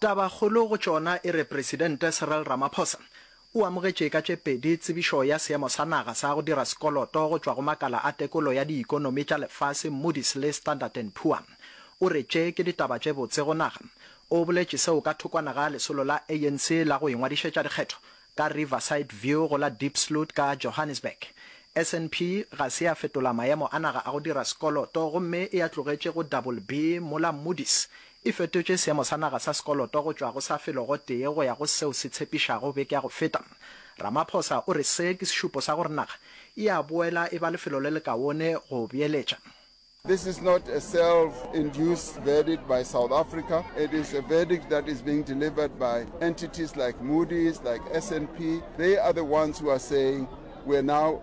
Tabakgolo go tšona e re Presidente Cyril Ramaphosa o amogetše ka tše pedi tsebišo ya seemo sa naga sa go dira sekoloto go tšwa go makala a tekolo ya diikonomi tša lefase Moody's le Standard and Poor. O re tše ke ditaba tše botse go naga. O boletše seo ka thokwana ga lesolo la ANC la go ingwadišetša dikgetho ka Riverside View go la Diepsloot ka Johannesburg. SNP ga se ya fetola maemo a naga a go dira sekoloto gomme e a tlogetše go double B mola Moody's E fetotše seemo sa naga sa sekoloto go tšwa go sa felogotee go ya go seo se tshepišago beke ya go feta. Ramaphosa o re se ke sešupo sa gore naga e a boela e ba lefelo le lekaone go beeletša. This is not a self induced verdict by South Africa, it is a verdict that is being delivered by entities like Moody's, like SNP, they are the ones who are saying we are now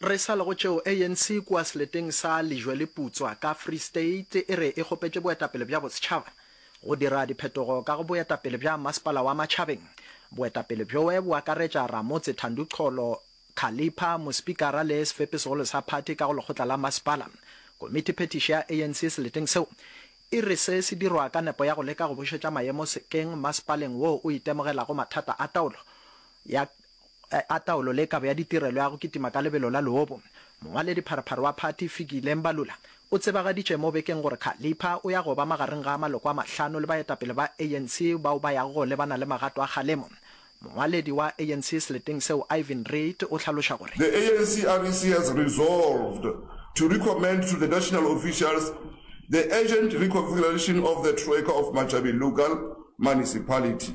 Re sa le go tšeo, ANC kua seleteng sa Lejwe-le-Putswa ka Free State e re e kgopetše boetapele bja bosetšhaba go dira diphetogo ka go boetapele bja masepala wa Matšhabeng. Boetapele bjoe bo akaretša Ramotse Thandu Cholo, Khalipha, Mospikara le Sefepi-segolo sa phathi ka go lekgotla la masepala. Komiti phethiši ya ANC seleteng seo e re se se dirwa ka nepo ya go leka go bušetša maemo sekeng masepaleng woo o itemogelago mathata a taolo ya a taolo le kabo ya ditirelo ya go kitima ka lebelo la leobu, mongwaledi pharaphara wa phathi Fikile Mbalula o tsebagaditše mo bekeng gore Khalipha o ya go ba magareng ga maloko a mahlano le baetapele ba ANC bao ba yago go lebana le magato a kgalemo. Mongwaledi wa ANC seleteng seo Ivan Reid o hlaloša gore. The ANC REC has resolved to recommend to the national officials the urgent reconfiguration of the Troika of Machabeng Local Municipality.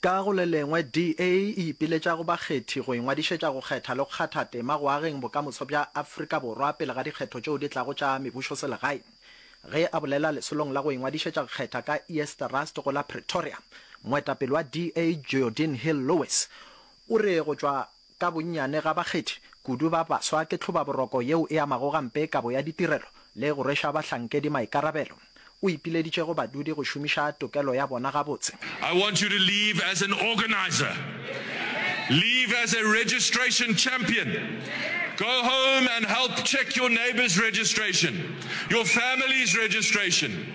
Ka go le lengwe, DA e ipiletša go bakgethi go ingwadišetša go kgetha le go kgatha tema go ageng bokamoso bja Afrika Borwa pele ga dikgetho tšeo di tlago tša mebušoselegae. Ge a bolela lesolong la go ingwadišetša go kgetha ka East Rust go la Pretoria, moetapele wa DA Geordin Hill-Lewis o re go tšwa Ka bonnyane ga bakgethi, kudu ba baswa, ke tlhobaboroko yeo e amago gampe kabo ya ditirelo le go rweša bahlankedi maikarabelo. O ipileditše go badudi go šomiša tokelo ya bona gabotse. I want you to leave as an organizer, leave as a registration champion, go home and help check your neighbour's registration, your family's registration.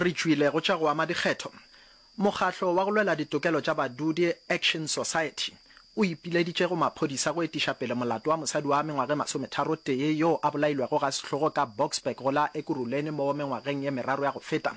Re tšwile go tša go ama dikgetho. Mokgatlo wa go lwela ditokelo tša badudi Action Society o ipileditše go maphodisa go etiša pele molato wa mosadi wa mengwaga e masometharotee yo a bolailwego ga sehlogo ka Boksburg go la Ekurhuleni mo mengwageng ye meraro ya go feta.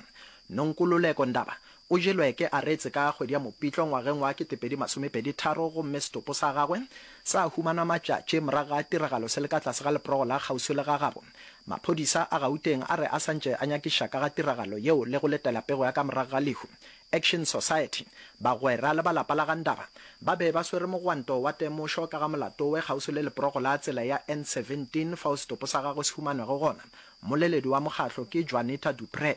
Nonkululeko Ndaba O jelwe ke Aretse ka kgwedi ya Mopitlo ngwageng wa 2023 gomme setopo sa gagwe sa humanwa matšatši morago ga tiragalo se le ka tlase ga leporogo la kgauswi le gagabo. Maphodisa a Gauteng a re a sa ntše a nyakiša ka ga tiragalo yeo le go letela pego ya ka morago ga lehu. Action Society, bagwera le ba lapa la ga Ndaba ba be ba swere mogwanto wa temošo ka ga molato we kgauswi le leporogo la tsela ya N17 fao setopo sa gagwe se humanwego gona. Mmoleledi wa mokgatlo ke Juanita du Preez.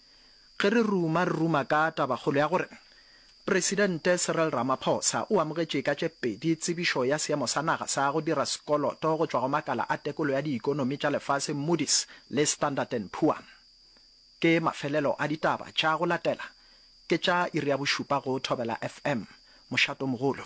Ge re ruma, re ruma ka tabakgolo ya gore Presidente Cyril Ramaphosa o amogetše ka tše pedi tsebišo ya seemo sa naga sa go dira sekoloto go tšwa go makala a tekolo ya diikonomi tša lefase Moody's le Standard and Poor. Ke mafelelo a ditaba tša go latela, ke tša iri ya bošupa go Thobela FM, Mošatomogolo.